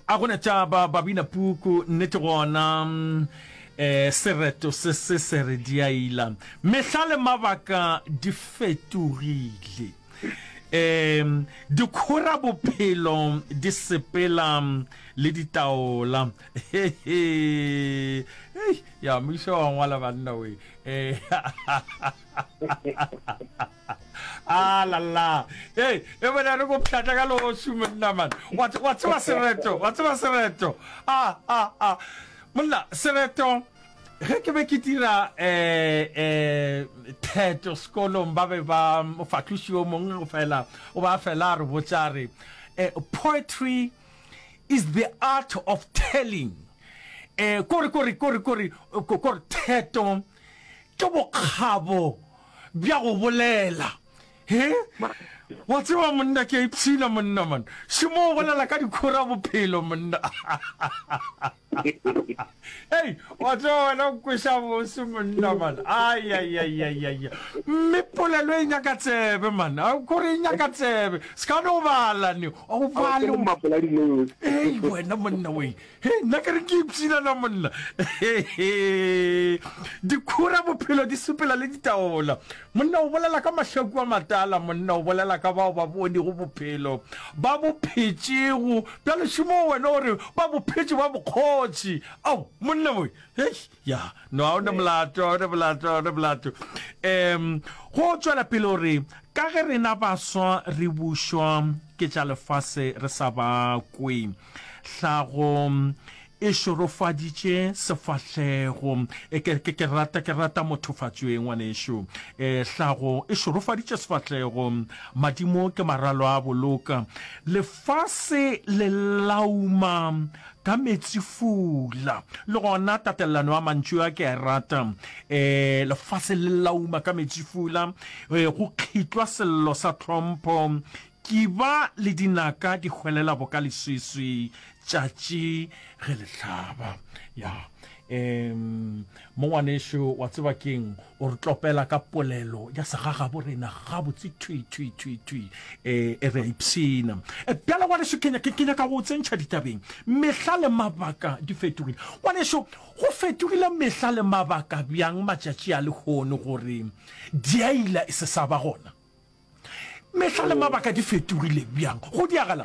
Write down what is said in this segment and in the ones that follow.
A gona tšaba babina puku nnete gona eh sereto se se se re diaila mehla le mabaka di fetogile eh dikhora bophelo di sepela le ditaola he he ya mmušo wa ngwala banna we eh A la la. Hey, e bona re go pšata ka losu monna man. Wa wa tseba sereto, wa tseba sereto. A a a. Monna sereto ge ke be ke dira eh eh theto sekolong ba be ba mofahloši o mongwe go fela o ba fela re botsa re eh, poetry is the art of telling eh kore kore kore kore kore theto Ke bokgabo bja go bolela. He? Wa tseba monna ke a ipshina monna man. Šemo o bolela ka dikhora bophelo monna. Hey, wa tseba wena o kweša bose monna man. Ai ai ai ai ai. Mme polelo e nyaka tsebe man. A kore e nyaka tsebe. Ska no bala ni. O bala. Hey wena monna wei. He, nna ke re ke ipshina na monna dikhura bophelo di supela le ditaola monna o bolela ka mahlaku a matala monna o bolela ka bao ba bonego bophelo ba bophetšego bja lešomo wena o re ba bophetše ba bokgotši ao monna moe ya no a o ne molato o ne molato o ne molato um go tswela pele o re ka ge rena baswa re bušwa ke tša lefase re sa ba kwe Hlago e šorofaditše sefahlego. E, ke, ke, ke rata ke rata mothofatšoe ngwanešu. E, hlago e šorofaditše sefahlego. Madimo ke maralo a boloka. Lefase le lauma ka metsifula. Le gona tatelelano ya mantšu a ke a e rata. E, lefase le lauma ka metsifula. E, go kgitlwa sello sa tlhompho Kiba le dinaka di hwelela boka leswiswi tšatši ge le hlaba. Ya, em, mo ngwanešu, wa tseba ke'ng? O re tlopela ka polelo ya segagabo rena gabotse thwi, thwi, thwi, thwi. E, e re a ipshina. E, bjale, ngwanešu, ke, ke, ke nyaka go o tsentšha ditabeng. Mehla le mabaka di fetogile. Ngwanešu, go fetogile mehla le mabaka bjang matšatši a lehono gore diaila e se sa ba gona? mehla le mabaka di fetogile bjang go diagala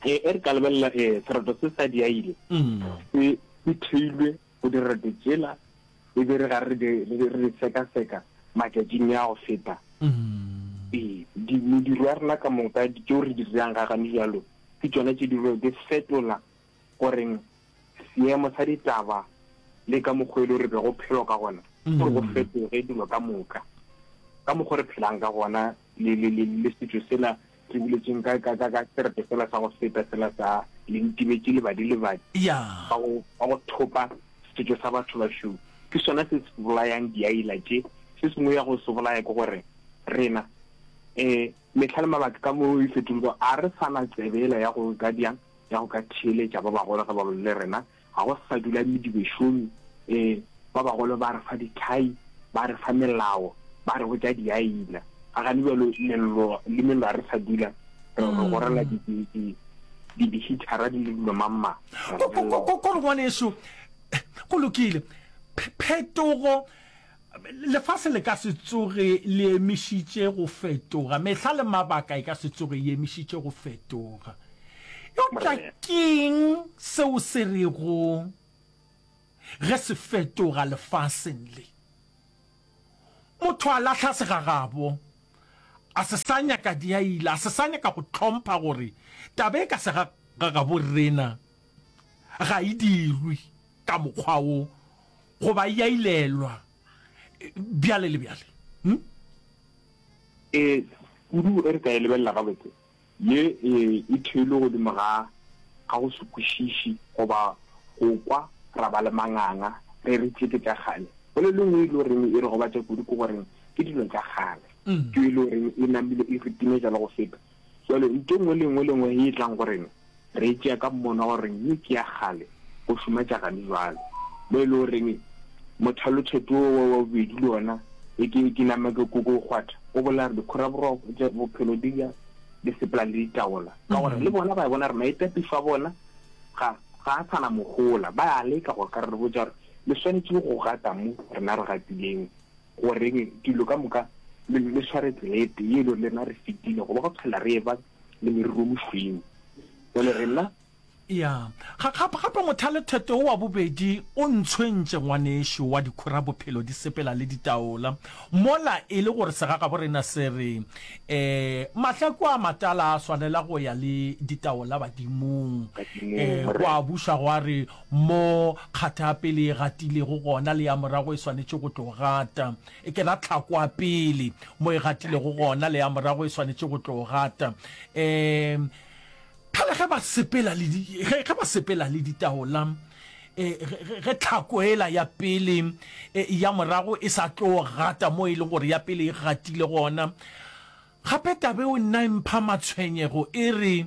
e re ka lebelela um sereto se sa diaile mm. se se theilwe go direto tsela e be re ga re di sekaseka matšatšing ya go feta mm. ee mediro ya rena ka moka tšeo re di dirang ga gane jalo ke tsona tše di fetola go reng seemo sa ditaba le ka mokgwa e le re be go phelo ka gona gore go fetoge dilo ka moka ka mokgwa re phelang ka gona le le le le setšo sela re buletseng ka ka ka ka serete fela sa go feta fela sa le ntibetse lebadi lebadi ya ba go ba go thopa setšo sa batho ba šou ke sona se se bolayang diaila tše se sengwe ya go se bolaya ke gore rena eh Mehla le mabaka ka mo e fetolego, a re sa na tsebe yela ya go ka bjang ya go ka theeletša ba bagolo ge ba bolela le rena. Ga go sa dula medibešomi. Ee, ba bagolo ba re fa dithai, ba re fa melao, ba re botša diaina. A ga le bjalo lello le mello? A re sa dula re gorela dihithara di le dilo mang-mang. Ko re ngwanešu, go lokile, phetogo Lefase le ka se tsoge le emišitše go fetoga, mehla le mabaka e ka se tsoge e emišitše go fetoga. Eupša ke'ng seo se rego ge se fetoga lefaseng le? Motho a lahla segagabo, a se sa nyaka diaila, a se sa nyaka go hlompha gore taba e ka segagabo rena ga e dirwe ka mokgwa wo goba ya ilelwa bjale le bjale hm? e kudu e re ka e lebelela gabotse ye e, e theilwe godimo ga ga go se kwešiši goba go kwa ra ba le manganga re re tšeke tša kgale go le lengwe e le goreng e re gobatša kudu ke goreng ke dilo tša kgale mm. ke e le goreng e namile e re timetša le go feta Jwale ntho nngwe le nngwe le nngwe e tlang go rena, re e tšea ka mmono wa goreng ye ke ya kgale go šoma tša gane jwale. Mo e le goreng mothalotšheto wo wa bobedi le wona e ke e ke nama ke koko o kgwatha, o bolela gore dikhoraboroko tša bophelo di ja di sepela le ditaola, ka gore le bona ba bona gore maitapišo a bona ga ga a sa na mohola, ba a leka gore ka re re botša gore le swanetše go gata mo rena re gatileng. Gore dilo ka moka le sware tselete ye le rena re fetile go ba go phela re eba le meriro mošweng jale rena ya gape mothalethete o wa bobedi o ntshwentše ngwanešu wa dikhura bophelo di sepela le ditaola mola e le gore segagaborena se re um mahlaku a matala a swanela go ya le ditaola badimong um go a buša go a re Mo kgatha ya pele e gatilego gona le ya morago e swanetše go tlo gata. E ke ra tlhako ya pele. Mo e gatilego gona le ya morago e swanetše go tlo gata. Um Phela ge ba sepela le di, ge, ge ba sepela le ditaola, eh, ge, ge, ge tlhako ela ya pele eh, ya morago e sa tlo gata mo e leng gore ya pele e gatile gona. Gape tabeo nna e mpha matshwenyego e re,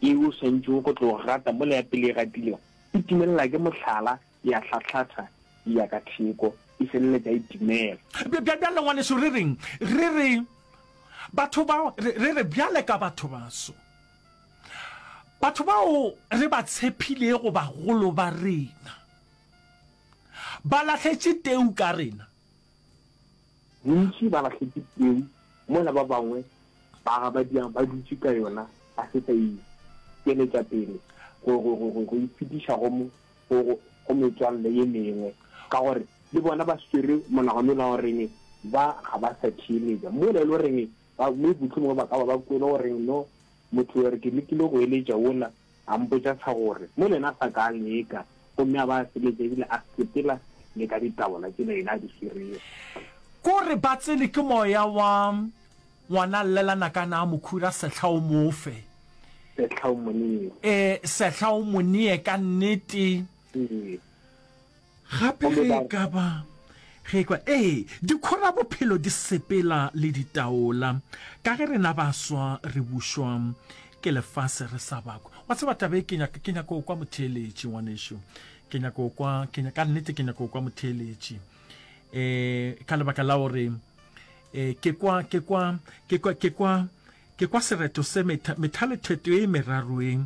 Yeo o swanetšego go tlo gata mola ya pele e gatilego, e timelela ke mohlala, ya hlahlatha, e ya ka theko, e feleletša e timela. Bjale, ngwanešu, re reng re re batho bao, re, re re bjale ka batho baso, batho bao re ba tshephilego, bagolo ba rena ba lahletše teu ka rena. Bontši ba lahletše peu mola ba bangwe ba gabadiang ba dutše ka yona ba se sa e tšweletša pele go e fetiša go metswalle ye mengwe ka gore le bona ba swere monagano wola wa goreng ba ga ba sa theeletša mola e le goreng mohlomongwe ba ka ba ba kwele goreng no motho yo re ke lekile go eletša wola A mpotša sa gore, Mo lena sa kang le eka? Gomme a ba a seletša ebile a sepela le ka ditabola tšela yena a di swiria. Ko re ba tsene ke moya wa ngwana llela nakana a mo khura sehla o mo fe. Sehla o mo nee. E, sehla o mo nee ka nnete. Ee. Gape ge e ka ba, ge e kwa, ee, dikhorabophelo di sepela le ditaola, ka ge rena ba swa re bušwa ke lefase re sa ba kwa. Wa tseba taba e, ke nyaka, ke nyaka go kwa motheeletši, ngwanešu. Ke nyaka go kwa, ke, ka nnete ke nyaka go kwa motheeletši, um ka lebaka la gore. E, ke kwa, ke kwa, ke kwa, ke kwa, ke kwa sereto se metha, methaletheto e meraro e,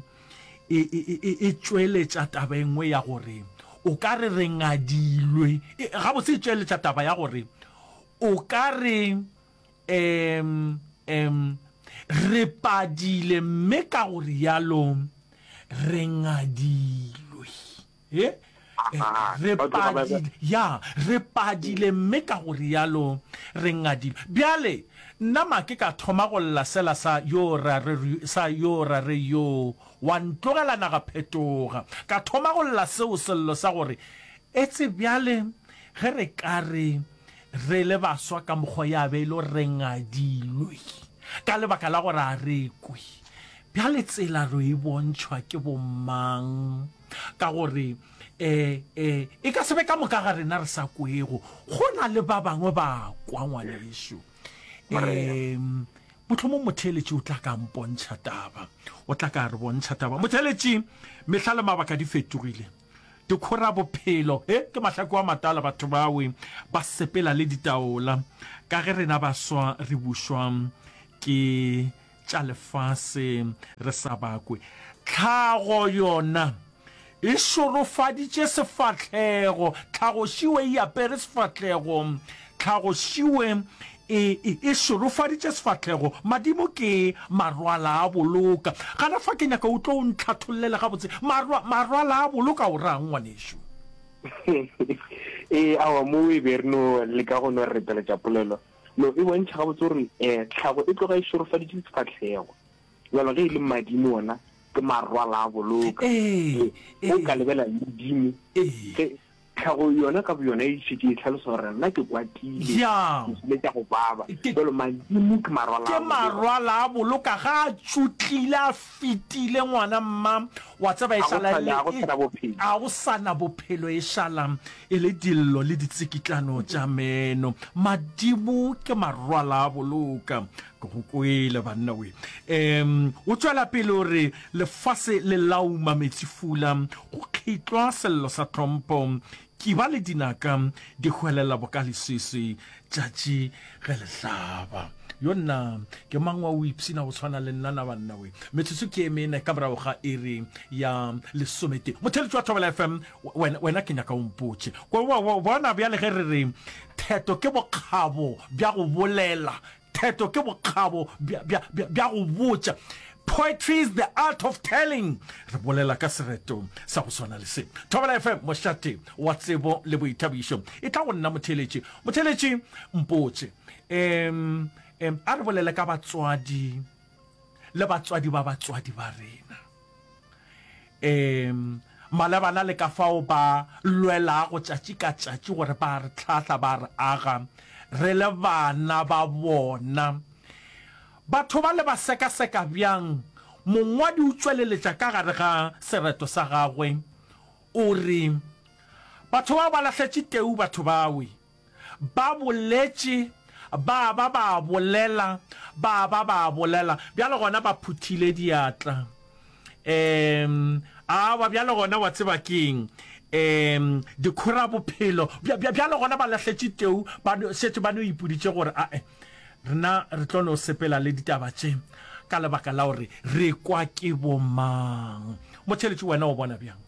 e, e, e, e, e tšweletša taba e nngwe ya gore o ka re re ngadilwe. E, gabotse e tšweletša taba ya gore o ka re em, em, re padile mme ka go rialo re ngadilwe. He, re padile, ya, re padile, mme ka go rialo re ngadile. Bjale, nna make ka thoma go lla sela sa, yoo ra re, sa, yoo ra re, yoo, wa ntlogela naga phetoga. Ka thoma go lla seo sello sa gore, Etse bjale, ge re ka re, re le baswa ka mokgwa ya be e le gore re ngadilwe, ka lebaka la gore a re kwe. Bjale tsela ro e bontšhwa ke bo mang? ka gore um um e ka sebe ka moka ga rena re sa kwego go na le ba bangwe ba kwa ngwaneso um motlhomong motheeletši o tla ka mpontšha taba o tla ka re bontšha taba motheeletši mehla le mabaka di fetogile dikgora bophelo e ke mahlako a matala batho bawe ba sepela le ditaola ka ge rena baswa re bušwa ke tša lefase re sa bakwe. Tlhago yona e šorofaditše sefahlego. Tlhagošiwe e apere sefahlego. Tlhagošiwe e, e, e šorofaditše sefahlego. Madimo ke marwala a boloka. Gana fa ke nyaka o tlo o ntlhathollela gabotse. Marwa, marwala a boloka o rang ngwanešu? ee awa mo o e be re no leka go no repeletša polelo Lo e bontšha gabotse gore um tlhago e tloga e šorofaditše sefahlego, bjalo ge e le madimo ona ke marwala a boloka. Ee, ee. O ka lebela le Modimo. Ee. Ge tlhago yona ka boyona e šetše e hlalosa gore nna ke kwatile, Bjang? ke kile ka go baba, Ke- bjalo madimo ke marwala a ke boloka. marwala a boloka ga a tšotlile a fetile ngwana mma wa tseba e šala e le e a go sana bophelo e šala e le dillo le ditsikitlano tša meno madimo ke marwala a boloka ke go kwele banna we um o tšwela pele o re lefase le lauma metsi fula go kgitlwa sello sa tlhompho Ke ba le dinaka di hwelela boka leswiswi tšatši ge le hlaba. Yo nna ke mang wa o ipshina go tshwana le nna na banna we? Metsotso ke e mene ka morago ga iri ya lesometee. Motheeletši wa Thobela FM, wena, wena ke nyaka o mpotše. Ko, bona bjale ge re re theto ke bokgabo bja go bolela, Theto ke bokgabo bja, bja, bja, bja go botša. Poetry is the art of telling. Re bolela ka sereto sa go swana le se. Thobela FM, mošate wa tsebo le boithabišo. E tla go nna motheletši. Motheletši, mpotše. Em, em, a re bolele ka batswadi le batswadi ba batswadi ba rena. Ee, malebana le ka fao ba lwelago tšatši ka tšatši gore ba re hlahla, ba re aga re le bana ba bona. Batho bale ba sekaseka bjang? Mongwadi o tšweleletša ka gare ga sereto sa gagwe, o re, Batho bao ba lahletše teu batho bawe. Ba boletše, ba ba ba bolela, ba ba ba bolela. Bjale gona ba phuthile diatla. Um, aowa, bjale gona wa tseba ke'ng? Um, dikhora bophelo. Bja, bja, bjale gona ba lahletše teu, ba no, šetše ba no ipuditše gore, ae, rena re tlo no sepela le ditaba tše, ka lebaka la gore re kwa ke bomang. Motheletši, wena o bona bjang?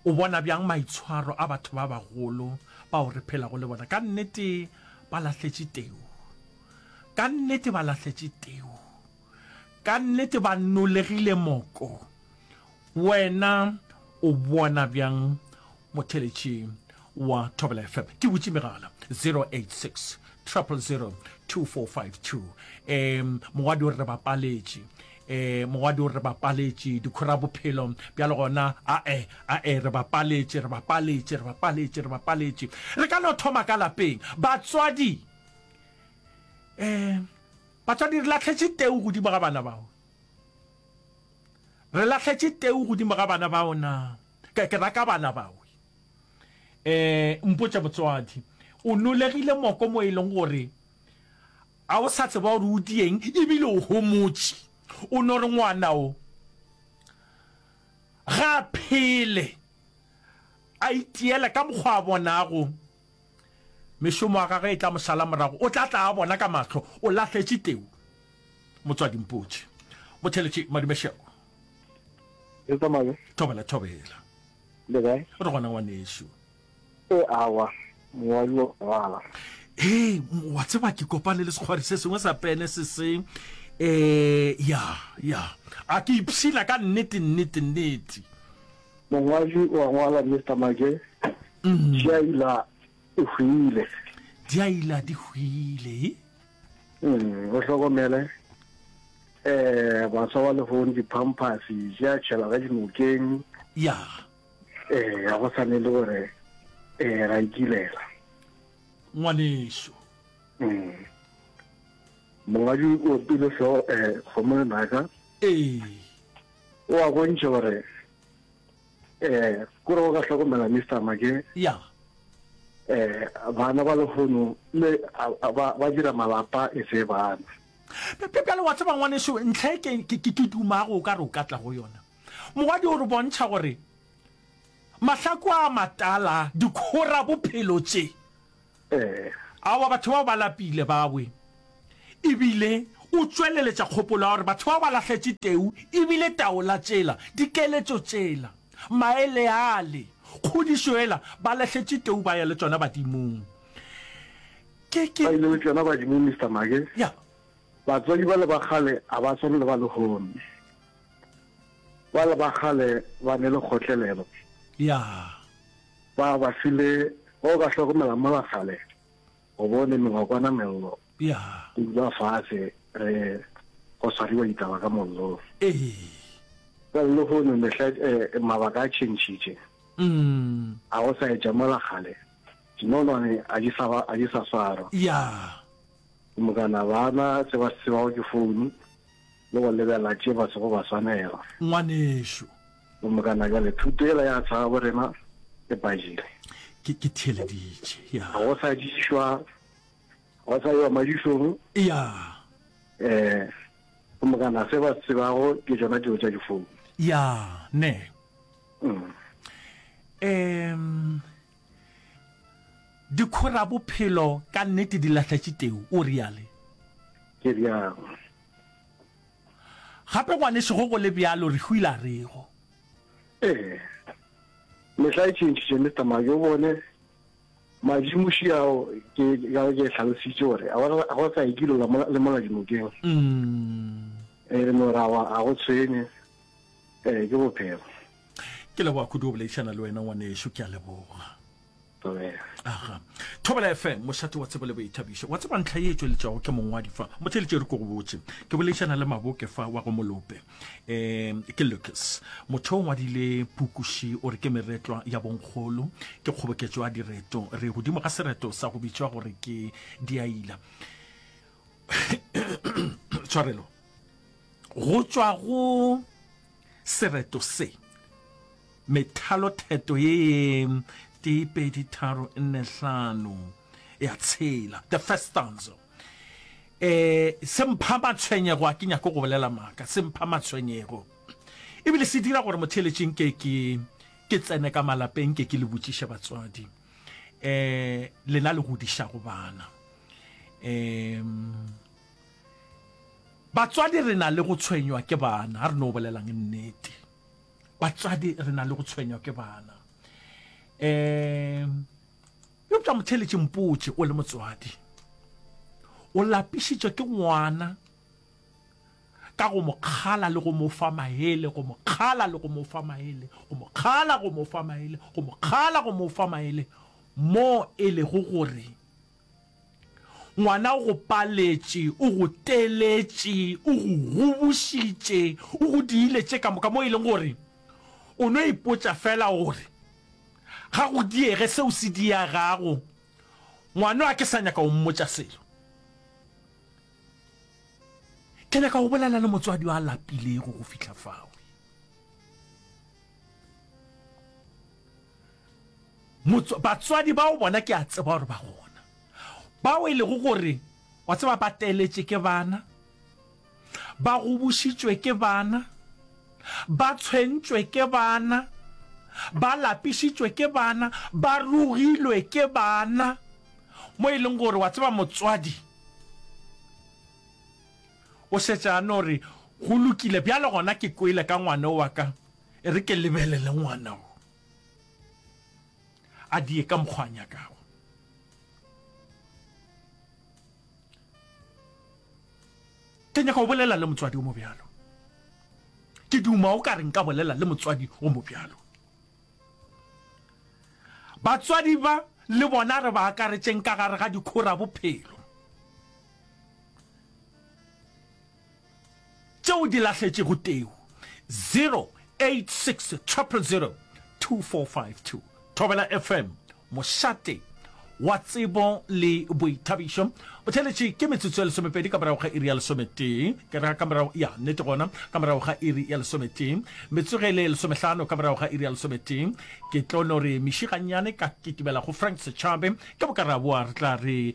O bona bjang maitshwaro a batho ba bagolo bao re phelago le bona? Ka nnete ba lahletše teu. Ka nnete ba lahletše teu. Ka nnete ba nolegile moko. Wena o bona bjang motheletši wa thobela fm ke butše megala 086 000 2452 um mogwadi o re re bapaletše eh mogwadi o re bapaletše dikhora bophelo bjale gona ae ae re bapaletše re bapaletše re bapaletše re bapaletše re ka no thoma ka lapeng batswadi eh batswadi re latlhetše teu godimo ga bana bao re latlhetše teu godimo ga bana bao na ke raka bana bao Eh, mpotša motswadi, o nolegile moko mo e leng gore a o sa tseba gore o dieng ebile o homotše. O no re ngwana o ga a phele a itiela ka mokgwa a bonago mešomo ya gagwe e tla mo sala morago, o tla tla a bona ka mahlo o lahletše teu. Motswadi, mpotše, go theletše Madumešego. Thobela, thobela. Le kae? O re gona ngwanešu. E awa, mowa yo bala. Hey, wa tseba ke kopane le sekgwari se sengwe sa pene se se eh ya ya a ke ipshina ka nnete nnete nnete mongwadi wa ngwala Mr Maje mm. Shaila e hwile. Di a ila di hwile. Mm, o hlokomele eh baswa ba lehong di-pampers di a tšhela ka dinokeng ya eh ga go sane le gore eh ra ikilela ngwaneso mm. mongwadi o pile feo um eh, kgomo lenaka ee o a bontšha gore Eh, ko re go ka hlokomela Mister Mage. Ya. Eh, bana ba lehono le ba ba dira malapa e se bana. Bjale wa tseba ngwaneso ntlha e ke ke ke dumago o ka re o ka tla go yona. Mogadi o re bontšha gore mahlako a matala dikhora bophelo tše Ee. Aowa, batho bao ba lapile, bawe. Ebile o tšweleletša kgopolo ya gore batho bao ba lahletše teu, ebile taola tšela, dikeletšo tšela, maele ale, kgodišo yela, ba lahletše teu ba ya le tšona badimong. Ke, ke. Ba ile le tšona badimong, Mister Maake. Ya. Batswadi bale ba kgale ga ba swane le ba lehono. Bale ba kgale ba ne le kgotlelelo. Ya. Ba ba file bao ba hlokomela mola kgale go bo le mengwakwana mello go dulwa fase re go swariwa ditaba ka mollong. Well lehono mehla mabaka a tšhentšhitše a go sa etša mola kgale dinonwane a di sa a di sa swarwa go mokana bana se ba se tsebago ke founu le go lebela tše ba sego ba swanela. Ngwanešu Bomokana, bjale thuto yela ya tshaba bo rena e badile. Ke, ke theeleditše, ya. Ga go sa dišwa, ga go sa ewa madišong. Ya. Eh, bomokana, se ba tsebago ke tšona dilo tša difounu. Ya, ne. Mm. Em, dikhora bophelo ka nnete di lahletše teu, o reale. Ke realo. Gape ngwanešu go go le bjalo re hwile a rego. Ee, mehla e tšhentšhitše, Mister Mark, o bone, madimuši ao ke, ka ke hlalositše gore a go- a go sa ye kilo la mola- le mola dinokeng. Mm. E re morawa a go tshwenye, ee, ke bophelo. Ke leboga kudu go boledišana le wena ngwanešu, ke a leboga. aga thobela fm mošate wa tsebo le boithabišo wa tseba ntlha ye e tšweletšago ke mongwadi fa motheletše re ko go botse ke boledišana le maboke fa wa go molope um ke lucas motho o ngwadile pukuši o re ke meretlwa ya bonkgolo ke kgoboketšo ya direto re godimo ga sereto sa go bitšwa gore ke diaila tshwarelo go tšwa go Sereto se. Methalotheto ye ye tee pedi tharo nne hlano ya tshela. The first stanza. E, se mpha matshwenyego, a ke nyako go bolela maaka, se mpha matshwenyego. Ebile se dira gore motheeletši nke ke ke tsene ka malapeng ke ke le botšiše batswadi. E, lena le godišago bana. E, Batswadi re na le go tshwenywa ke bana, a re no bolelang nnete. Batswadi re na le go tshwenywa ke bana. Um eupša motheletše mpotše o le motswadi o lapišitšwe ke ngwana ka go mo kgala le go mo fa maele go mo kgala le go mo fa maele go mo kgala go mo fa maele go mo kgala go mo fa maele mo e lego gore Ngwana o go paletše, o go teletše, o go gobošitše, o go diile tše ka moka mo e leng gore o no ipotša fela gore ga go diege seo se diagago. Ngwano a ke sa nyaka o mmotša selo. Ke nyaka go bolela le motswadi a lapilego go fihla fao. batswadi bao bona ke a tseba gore ba gona bao e lego gore wa tseba ba teletše ke bana ba gobošitšwe ke bana ba tshwentšwe ke bana ba lapišitšwe ke bana ba rogilwe ke bana mo e leng gore wa tseba motswadi O šetše a no re, Go lokile, bjale gona ke kwele ka ngwana o wa ka, e re ke lebelele ngwana wo a die ka mokgwa a nyakago. Ke nyaka go bolela le motswadi o mo bjalo. Ke duma o ka re nka bolela le motswadi o mo bjalo. Batswadi ba le bona re ba akaretšeng ka gare ga dikhora bophelo. tšeo di lahletšego teu 086 000 2452 Thobela FM mošate wa tsebo le boithabišo botheletše ke metsotso ya lesomepedi ka morago ga iri ya lesometee ke ra ka morago ya nnete gona ka morago ga iri ya lesometee metsogele lesomehlano ka morago ga iri ya lesometee ke tlo no re mešigannyane ka kitimela go frank setšhabe ke bokaraboa re tla re